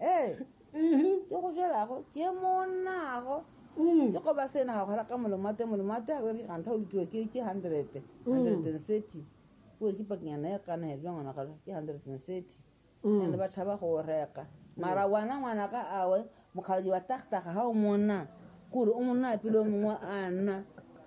ee ke go jelago ke monago ke go ba sena ga gora ka molomate molomate a gore gantha o letiwa ke ke hundred hundred and thirty o re ke pakenyana ya kana ya jwa ngwana galo ke hundred and thirty and ba tšhaba go o reka mara wana ngwana ka awe mokgadi wa tagtaga ga o monna kore o monna pele o mongwe a nna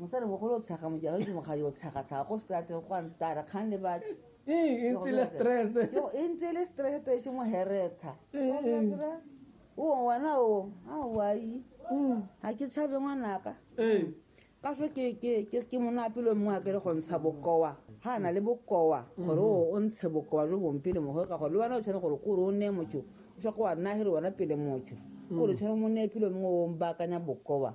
Mosalimogolo o tshega mojalo ke mokgadi o tshega-tshega ko strateng go a ntara kgang le batho e ntse le stress e ntse le stress to e se mo heretha o wena o a wai ga ke tshabe ngwanaka ka so ke monapelo mongwe a kere go ntsha bokowa ga a na le bokowa gore o ntshe bokowa jo bong pele mogo ka gore le wena o tshwane gore kore o neye motho o swa ko wa nagere wena pele motho kore tshwane mo neye pelo mongwe o baakanya bokowa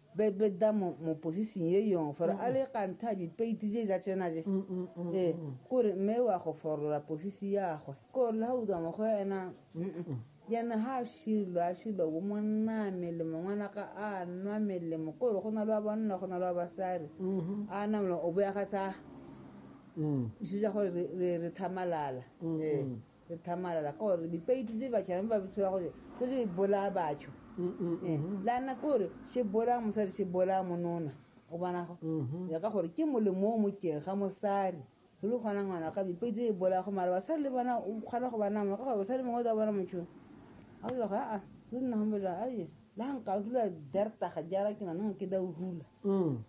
be be da mo mo position ye yong fore a le kanta bi peiti je ja tsena je e kore me wa go forola position ya gwe ko le ha u da mo go ena yana ha shilo a shilo wo monna mele mongwana ka a nwa mele mo kore go na le ba banna go na le ba basari a na mo o bo ya ga tsa se ja gore re re thamalala e re tlhamalala ka gore dipeiti tse batho yane ba bitshola gore ko se bolaya batho Eh, la nna ke gore se bolaya mosadi se bolaya monona o bona go ya ka gore ke molemo o mokeng ga mosadi re le kgona ngwana ka dipeiti tse e bolaya go mara basadi le bona o kgona go bana mona ka gore basadi mongwe o tla bona motho a bela ga a re nna gombela aye la nka dula dartaga jara ke nanong ke da o hula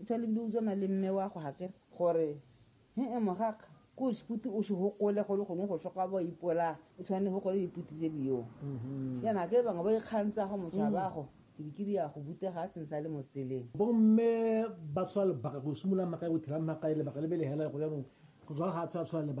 O tshwa lebile o tswana le mme wa go hakere. Gore, he-e mogakga, ko seputi o se hokole golo gongwe go soka bo ipola o tshwane go gole diputi tse bio mm-hmm. yana ke bangwe ba ikgantsa go motshabago mm. kirikiri ya go butega a tsentsa le mo tseleng bomme ba tshwa lebaka go simolola maka go thira maka e lebaka le bele hela go yanong go tswa ga tshwa tshwa lebaka